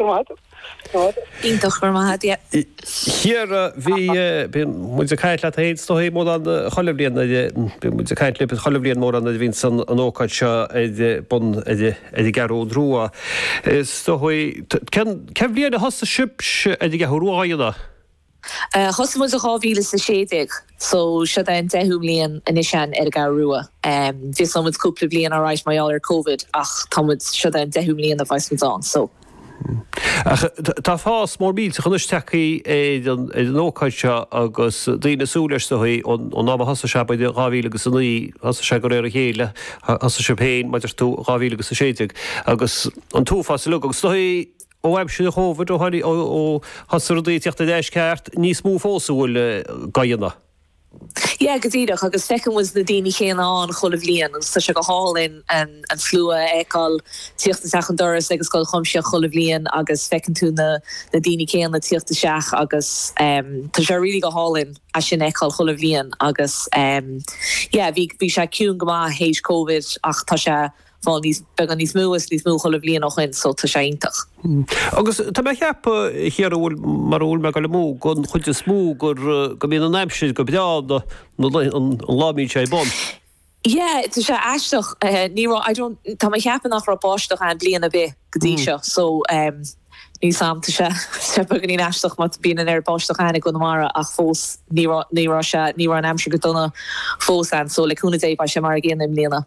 Iontach, go raibh maith a'd, yeah. Ciara, bhí, bíonn muid ag caint leat fhéin is dóigh mórán chuile bhliain, bíonn muid ag caint libh chuile bhliain mórán nuair a bhíonns an an ócáid seo ar bun ar ar an gCeathrú Rua. Is dóigh, cén cén bhliain a thosaigh sibhse ar an gCeathrú Rua a dhéanamh? Thosaigh muid i dhá mhíle is a sé déag so siod é an deichiú mbliain anois ann ar an gCeathrú Rua. Mhisseáil muid cúpla bliain alright mar gheall ar Covid ach tá muid, siod é an deichiú mbliain a bheas muid ann so. Ach tá fás mór millteach anois tagthaí ar an ócáid seo agus daoine ag súil leis is dóigh. Ón am a thosaigh sé, b'fhéidir dhá mhíle agus a naoi, thosaigh sé go réir a chéile, thosaigh sibh féin, mar a deir tú, dhá mhíle agus a sé déag agus tá an fás uilig agus so Ó aimsir an Chovid, ó tháinig, ó thosaigh rudaí ag teacht ar ais ceart, níos mó fós atá ag goil dhá dhéanamh. Yeah, go díreach, agus feiceann muid na daoine céanna ann chuile bhliain agus tá sé go hálainn an slua a fheiceáil tíocht isteach an doras ag an Scoil Chuimsitheach chuile bhliain agus feiceann tú na daoine céanna tíocht isteach agus tá sé really go hálainn é sin a fheiceáil chuile bhliain agus yeah bhí sé ciúin go maith théis Covid ach tá sé fáil níos, beagán níos mó is níos mó chuile bhliain ó shoin so tá sé iontach. Agus tá mé a' ceapadh Ciara, bhfuil, mara bhfuil mé goil amú, gon chuid is mó gur, go mbíonn an aimsir go breá na, na lae, an lá a mbíonn sé ar bun. Yeah, tá sé aisteach, ní raibh, I don't, tá mé a' ceapadh nach raibh báisteach ann bliain a' bith go dtí seo so ehm níl 'fhios a'm, tá sé, tá sé beagáinín aisteach mar bíonn an oiread báisteach ann i gConamara ach fós ní raibh, ní raibh sé, ní raibh an aimsir go dona fós ann so le cúnamh Dé beidh sé mar a gcéanna i mbliana.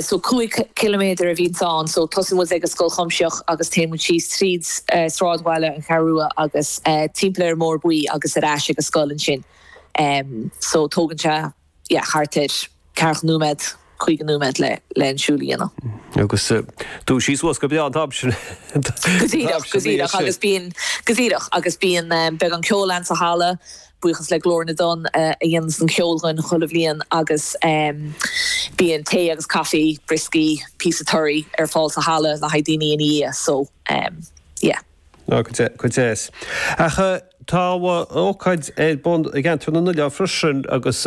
so cúig chiliméadar a bhíonns ann, so tosaíonn muid ag an Scoil Chuimsitheach agus téann muid síos tríd sráidbhaile na Ceathrún Rua agus timpeall ar an mBóthar Buí agus ar ais ag an scoil ansin, so tógann sé yeah thart ar ceathracha nóiméad, caoga nóiméad le le an siúl a dhéanamh. Agus tú dúisithe suas go breá an t-am sin, an t-am sin, bhí sé. Go díreach, go díreach agus bíonn, go díreach agus bíonn beagán ceoil ann sa halla Buíochas le Glór na dTonn a dhéananns an ceol dhúinn chuile bhliain agus bíonn tae agus caife, brioscaí, píosa toraidh ar fáil sa halla le haghaidh daoine ina dhiaidh so yeah. Nach deas, go deas. Ach tá ócáid ar bun i gceantar na nOileán freisin agus.